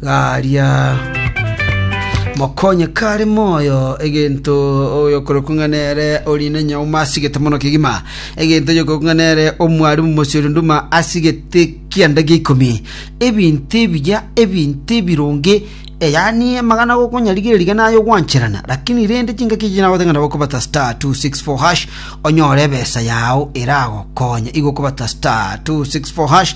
garia mokonye kare moyo egento oyokorokwa ng'a nere orinde nyauma asigete mono kegima egento oyokorokwa ng'a nere omwarimu mosiri nduma asigete kianda gia ikomi ebinto ebiya ebinto ebironge Eh, yaani amagana gokonyarigereria gana ayo gwancherana lakini rende chingaki echi nagoteng'ana gokobata star 264 hash onyore ebesa yao eragokonye igokobata star 264 hash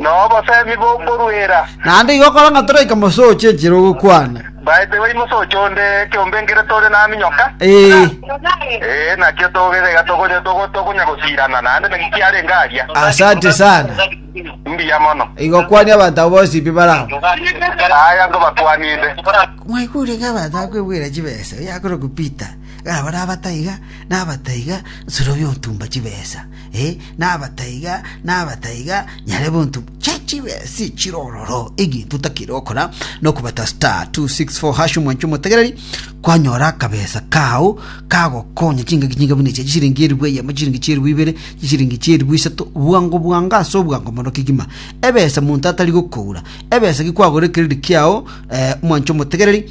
Nobosemi bw'okoruera. Naende igo kora ng'a toraika mosoche enchera ogokwana. Baete wai mosoche onde ekiombe nkere tore naminyoka. Ee. Ee, nakio togere iga togonya togo- togonya gosirana naende naki kiarenge aria. Asante sana. Mbuya mono. Igo kwania abanto abo bonsi pi barao. Aya ngobatwaninde. Mwaigure ng'a abanto bakwebwera chibesa, oyo akorokwa Peter, ng'a baria abataiga, na abataiga, nsorobia otumba chibesa. ee, nabataiga, nabataiga, nyare bonto chia chibesi chire ororo, egento takere okora, nokobata star 264 hash omwancho omotegereri, kwanyora akabesa kao kagokonya chingaki chinga buna eche chisiringi eribu eyemo chisiringi chieribu ibere chisiringi chieribu isato bwango bwango ase obwango mono kegima ebesa monto atari gokoura ebesa gi kwagora ekeredit kiao eh, omwancho omotegereri